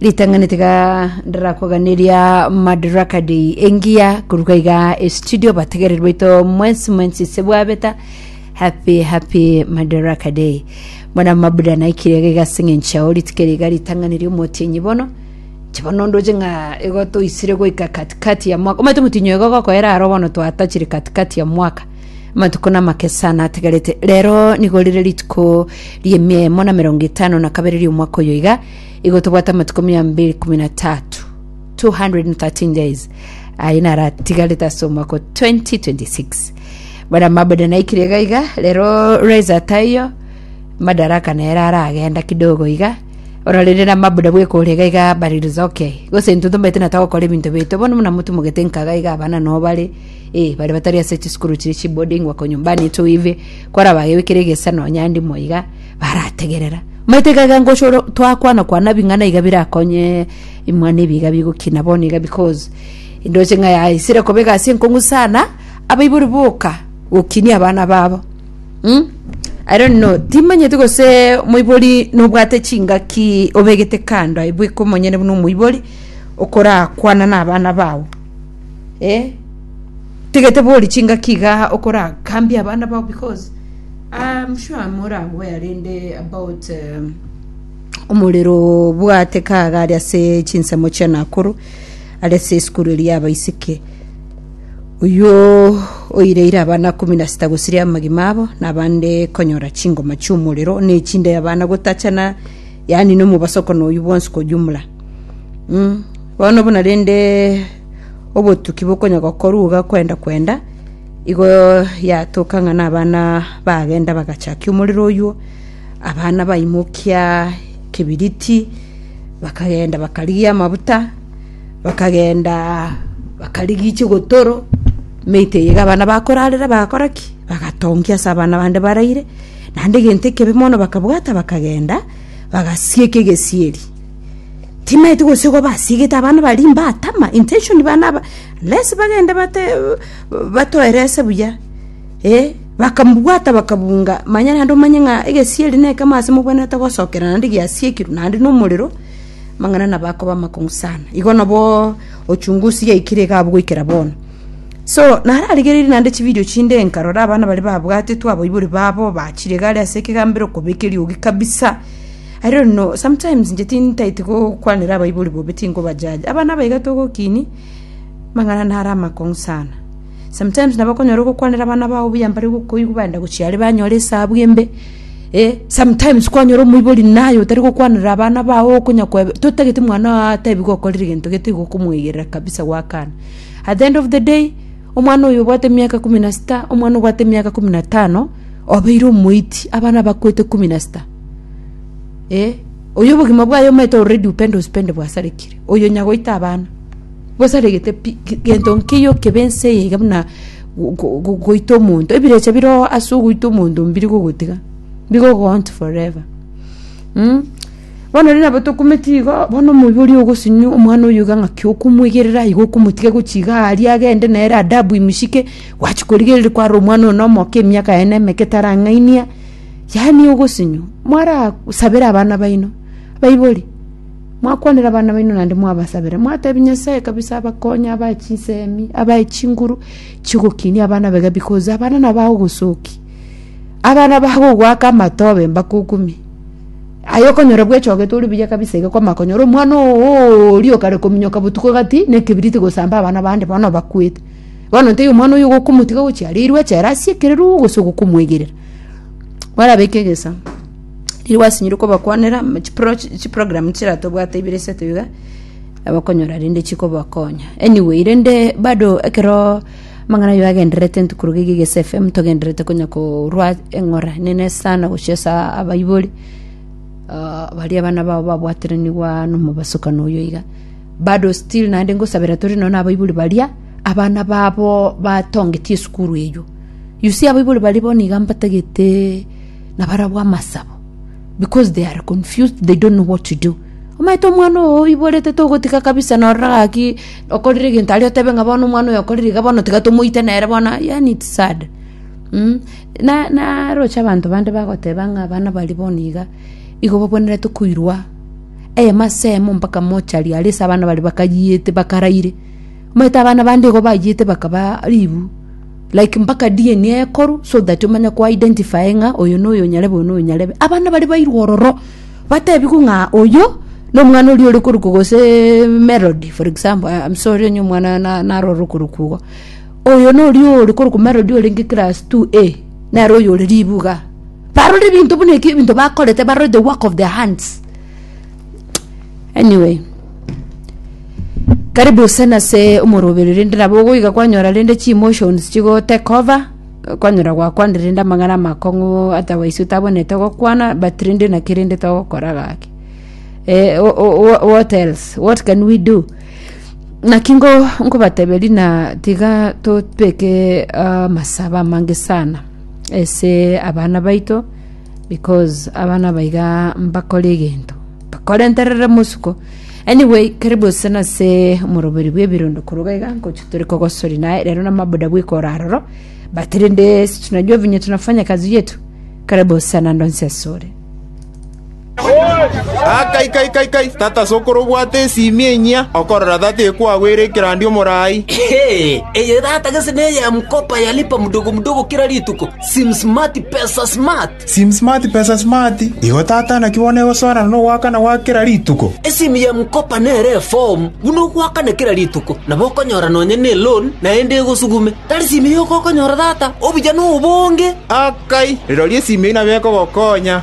ritang'ani tiga ndirakoganeria madaraka day engiya koruka iga estudio bategereri baito mwensi mwensi se bwabeta happy happy madaraka day mwana mabuda naikire iga iga sing'enchao ritikere iga ritang'ani ria omotienyi bono chibono ndoche ng'a igo toisire goika katikati ya mwaka omanyete omotinyo igo gokoera aro bono twatachire katikati ya mwaka amatuko na amake sana ategerete rero nigo rire rituko riemia emo na emerongo etano na kabere ria omwaka oyo iga Igo tobwate amatuko mia mbiri ikomi na tato, 213 days, aye naratigarete ase omwaka o 2026. Bwana Mabda naikire iga iga, rero Reza taiyo, Madaraka nere aragenda kidogo iga, ororire na Mabda bweka ore iga iga baririza okay. Gose intwe tomaete na togokora ebinto biaito, bono buna motumogete nkaga iga abana no bare, eh, bare batari ase chisukuru chiri chiboarding wako nyumbani tu hivi, kwarabagewekire egesa nonya ndimo iga, barategerera. Maete iga iga ngocha ore twakwana kwana bing'ana iga birakonye imwana ebiga bigokina bono iga because indoche ng'a yaisire koba egasi enkong'u sana abaibori boka gokinia abana babo mm? I don't know timanyeti gose moibori nobwate chingaki obegete kando aye bweka omonyene buna omoibori okorakwana na abana bao eh tigete bori chingaki igaa okoragambia abana bao because I'm sure more aware rende about um, omorero obwate kaga ari ase chinsemo chia Nakuru ari ase esukuru eria abaiseke oyo oireire abana kumi na sita gosiria amagima abo na abande konyora chingoma chi'omorero na echinde y'abana gotachana yaani nomobasoko na oyio bwonsi kwa ojumla Mm, bono buna rende obotuki bokonya gokorwa iga kwenda kwenda igo yatoka ng'a na abana bagenda bagachakia omorero oywo abana baimokia kebiriti bakagenda bakarigia amabuta bakagenda bakarigia chigutoro emate eye iga abana bakorarera bagakora ki bagatongia ase abana bande baraire naende egento ekebe mono bakabwata bakagenda bagasieka egesieri. timaeti gose igo basigete abana bari mbatama intention bana aba unless bagende bate batoere ase buya eh bakambwata bakabunga manya naende omanye ng'a egesieri na ekemo ase mobwenerete gosokera naende giasiekirwe naende na omorero amang'ana nabo akoba amakong'u sana igo nabo ochunguzi yaikire iga abwo goikera bono so nararigereiri naende chividio chinde nkarora abana baria babwatetwe abaibori babo bachire igare ase ekegamero kobeka eriogi kabisa. I don't know, sometimes inche tintaeti gokwanera abaibori bobe tinkobajaja, abana abaiga togokinia mang'ana naro amakong'u sana, sometimes nabo okonyora ogokwanera abana bao buya mbare gokoigwa baenda gochia are banyore esabu embe eh, sometimes kwanyora omoibori naye otari gokwanera abana bao okonya koeba totagete mwana oo atebi gokorire gento gete igo okomoegerera kabisa gwakana, at the end of the day omwana oyo obwate emiaka kumi na sita, omwana obwate emiaka kumi na tano obeire omoiti abana bakwete kumi na sita. eh oyio obogima bwaye omanyete already upende osipende bwasarekire oyo nyagoita abana bosaregete pi gento nkeiyo kebe ense eye iga buna go- go- go- goita omonto ebirecha bire oo ase ogoita omonto mbiri gogotiga bigo go- haunt forever mh. Bono riria nabo tokumeti igo bono omoibi oria ogosinyi omwana oyo iga ng'aki okomoigerera aye iga okomotiga gochi igaa aria agende nere adabu imosike gwachi korigereria kware omwana oyo na omooke emiaka yaye na emeke tarang'ainia. yaani ogosinyo mwarasabere abana baino baibori mwakwanera abana baino naende mwabasabera mwatebi nyasaye kabisa abakonye abae chinsemi abae chinguru chigokinia abana baiga because abana nabo agogosoki abana bagogoaka amatobe mbakukumie aye okonyora bwechogete ori buya kabisa iga kwamanya konyora omwana oooria okare kominyoka botuko gati na ekebiriti gosamba abana bande bono bakwete. Bono ntaiyo omwana oyo gokomotiga gochia are erwe achere ase ekerero gose ogokomwegerera kwarabeke egesamu riria gwasinyire kobakwanera ama- chipro- chiprogram chiria tobwate ibere isato iga abakonyora rende chikobakonya anyway rende bado ekero amang'ana ayo agendererete intwe korwa iga egese fm togendererete konya korwa eng'ora nene sana gochia ase abaibori ah baria abana babo babwaterenigwa nomobasukano oyo iga bado still naende ngosabera tore nonye na abaibori baria. abana babo batongetie esukuru eyio. You see abaibori baria bono iga mbatagete nabarabwo amasabo because they are confused they don't know what to do omanyete omwana ogo oiborete togotiga kabisa norora gaki okorire egento aria otebe ng'a bono omwana oyo okorire iga bono tiga tomoite nere bono yaani it's sad mm na naroche abanto bande bagoteba ng'a abana baria bono iga igo babwenerete koirwa eyemo ase eyemo mpaka mortuary are ase abana baria bakayiete bakaraire. omanyete abana bande igo baiyete bakaba ribu like mpaka DNA ekorwa so that omanye ko identify ng'a oyo na oyo nyarebe oyo na oyo nyarebe abana baria bairwe ororo batebiwa ng'a oyo nomwana oria ore korokwa gose Melody for example am sorry onye omwana na narorire okorokwa igo oyo noria ore korokwa Melody orenge class 2A nere oyo ore ribu igaa barore ebinto buna eki ebinto bakorete barore the work of their hands. anyway karibu sana ase omorobero rende nabo ogoika kwanyora rende chi emotions chigo take over kwanyora gwakwanire rende amang'ana amakong'u otherwise otabwenerete gokwana but rende naki rende togokora gaki eh, o- o- wha- what else what can we do naki ngo- nkobateberia na tiga tobeke amasabo amange sana ase abana baito because abana abaiga mbakore egento bakore nterere mosuko anyway karibu sana se omoroberi bw'ebirondo koruga iga nkochi tore kogosori naye rero namaboda bweka oraroro but rende si tunajua venye tunafanya kazi yetu karibu sana ndonsi asore Ah, kai kai kai kai tata sokoro obwate esimi enyia okorora tata ekwagwera ekirandi omorai Hey, eye tata gese neye ya mkopa yalipa mdogo mdogo kila rituko SimSmart Pesa Smart. SimSmart Pesa Smart igo tata naki bono egosoerana n'ogoakana gwa kera rituko. Esimu ya M-Kopa nere efomu buna ogoakana kera rituko, nabo okonyora nonya ne loan naende egosugume. Tari simu eyio gokonyora tata, obuya nobonge. Akai, rirorio esimu eyio nabo ekogokonya.